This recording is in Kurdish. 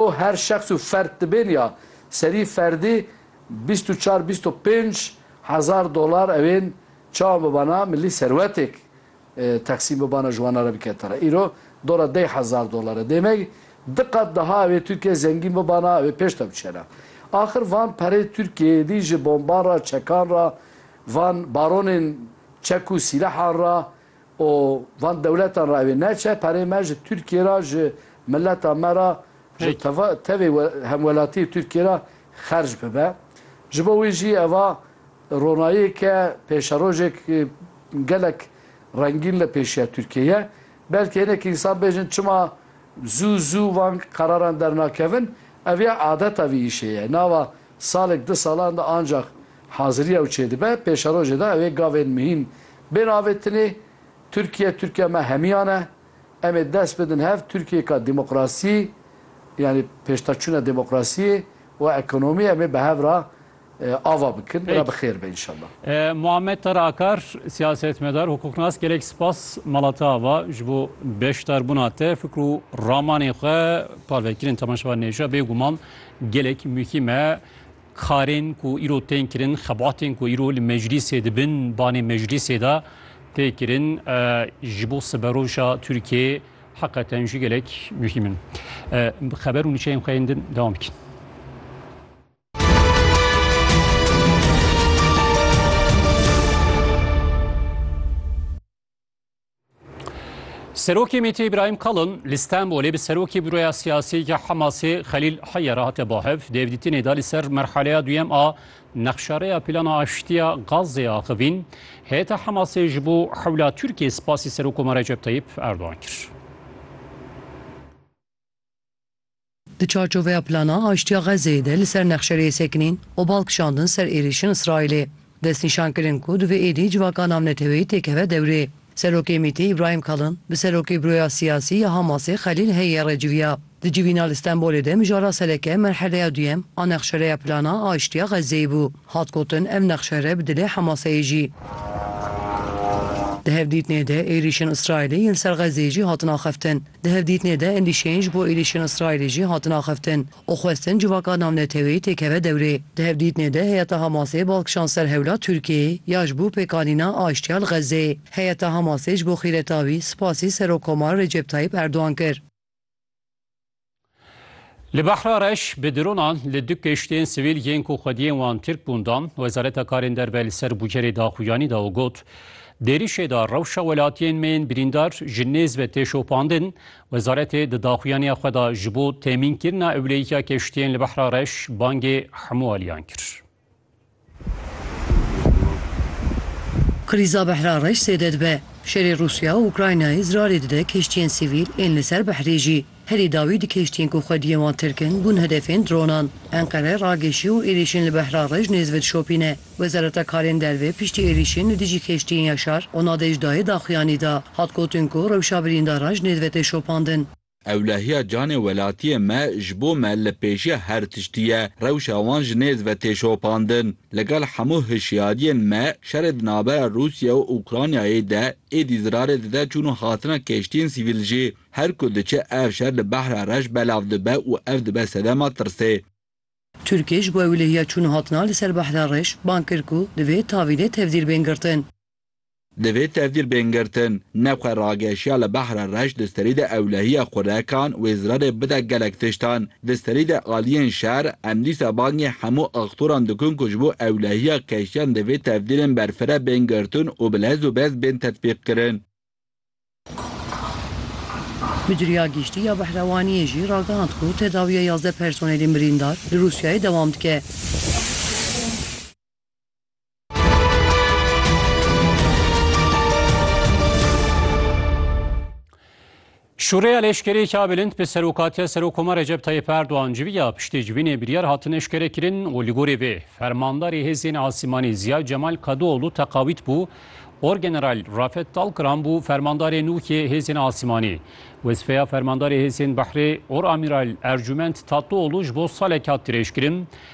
Û her şexs û ferd dibên ya serî ferdî bîst û çar bîst û pênc hezar dolar ew ên çawa bibana milî serwetêk teqsîm bibana ji wana re bike tera îro dora deh hezar dolar e dêmek di qat daha ew ê Tirkiye zengîn bibana ew ê pêş de biçera axir van perê Tirkiyeyê dî ji bomban ra çekan ra van baronên çek û sîlehan ra û van dewletan ra ewê neçe, perê me ji Tirkiyê ra, ji mileta me ra, ji tevê hemwelatiyê Tirkiyê ra xerc bibe. Ji bo wî jî eva ronayêke, pêşerojêk gelek rengîn li pêşiya Tirkiyê ye. Belkî hinek însan bêjin çima zû zû van qeraran dernakevin, ev ya adeta vî îşê ye. Nava Salek di salan de ancax hazirî ew çêdibe, pêşerojê de ew ê gavên mihîn bên avêtinê. Tirkiye, Tirkiya me hemiyan e. Em ê dest bidin hev Tirkiyeyeka demokrasî, yanî pêştaçûna demokrasiyê û ekonomiyê em ê bi hev re ava bikin. Pêk. Re bi xêr be înşallah. Muhammed Tara Akar, siyasetmedar, hukuknas gelek spas mala te ava ji bo beşdarbûna te, fikr û ramanên xwe parve kirin temaşevanên hêja. Bêguman Gelek muhîm e karên ku îro tên kirin, xebatên ku îro li meclîsê dibin, banê meclîsê de tê kirin ji bo siberoja Tirkiyeyê heqeten jî gelek muhîm in. Bi xeber û niçeyên xwe yên din dewam bikin. Serokê MT İbrahim Kalın li Stenbolê bi serokê büroya siyasî ya Hamasê Xelîl Heyye re hate bahev dêvdîtinê da li ser merhaleya duyem a nexşareya plana aştiya Gazê axivîn heyeta Hamasê ji bo hewla Tirkiyê spasî Serokoma Recep Tayyip Erdogan kir. Di çarçoveya Plana Aştiya Xezzeyê de li ser Nexşerê sekinîn û bal kişandin ser êrîşên Îsraîlê destnîşan kirin ku divê êdî civaka navneteweyî tê keve dewrê. Serokê MÎT'ê Îbrahîm Kalin bi Serokê Buroya Siyasî ya Hamasê Xelîl Heyê re civiya. Di civîna li Stenbolê de mijara sereke merheleya duyem a Nexşereya Plana Aştiya Xezzeyê bû. Hat gotin ev nexşere bi dilê Hamasê ye jî. Di hevdîtinê de êrîşên Îsraîlê yên ser Xezzeyê jî hatin axeftin. Di hevdîtinê de endîşeyên ji bo êrîşên Îsraîlê jî hatin axiftin û xwestin civaka navneteweyî têkeve dewrê. Di hevdîtinê de heyeta Hamasê bal kişand ser hewla Tirkiyeyê ya ji bo pêkanîna aştiya li Xezzeyê. Heyeta Hamasê ji bo xîreta wî spasî Serokkomar Recep Tayyîp Erdogan kir. Li Behra Reş bi dronan li du keştiyên sivîl yên ku xwediyên wan Tirk bûn dan. Wezareta Karên Derve li ser bûcerê daxuyanî da û got, Di êrîşê de rewşa welatiyên me yên birîndar ji nêz ve tê şopandin. Wezaretê di daxuyaniya xwe de ji bo temînkirina ewleyiya keştiyên li Behra Reş bangê hemû aliyan kir. Krîza Behra reş zêde dibe. Şerê Rûsya û Ukraynayê zirarê dide kiştiyên sivîl ên li ser behrê jî. Herî dawî di kiştiyên ku xwediyên wan tirk in bûn hedefên dronan. Enqere ragêşî û êrîşên li Behra reş nêzve dişopîne. Wezareta Karên Derve piştî êrîşên li dijî kiştiyên ya şar û nadejdayê daxuyanî da. Hat gotin ku rewşa birîndaran ji nêzve tê şopandin. Ewlehiya canê welatiyê me ji bo me li pêşiya her tiştî ye. Rewşa wan ji nêz ve tê şopandin. Li gel hemû hişyariyên me, şerê di navbera Rûsya û Ûkranyayê de êdî zirarê dide çûn û hatina keştiyên sivîl jî. Her ku diçe ev şer li Behra Reş belav dibe û ev dibe sedema tirsê. Tirkiye ji bo ewlehiya çûn û hatina li ser Behra Reş bang kir ku divê tavînê tevdîr bên girtin. Divê tevdîr bên girtin. Ne xwe rageşiya li behra reş di serî de ewlehiya xurekan wê zirarê bide gelek tiştan. Di serî de aliyên şer em dîsa bangê hemû aktoran dikin ku ji bo ewlehiya keştiyan divê tevdîrên berfire bên girtin û bi lez û bez bên tetbîqkirin. Midiriya Giştî ya Behrewaniyê jî ragihand ku tedawiya yazdeh personelên birîndar li Rûsyayê dewam dike. Şûreya leşkerê ka bilind bi serokatiya Serokoma Recep Tayyip Erdoğan civiya piştê civînê biryar hatin eşkere kirin û li gorê vê fermandarê hêzên asîmanî Ziya Cemal Kadıoğlu teqawît bû Orgeneral Rafet Talkıran bû fermandarê nû yê hêzên asîmanî. Wezifeya fermandarê hêzên behrê Oramiral Ercûment Tatlıoğlu ji bo salek hat dirêjkirin.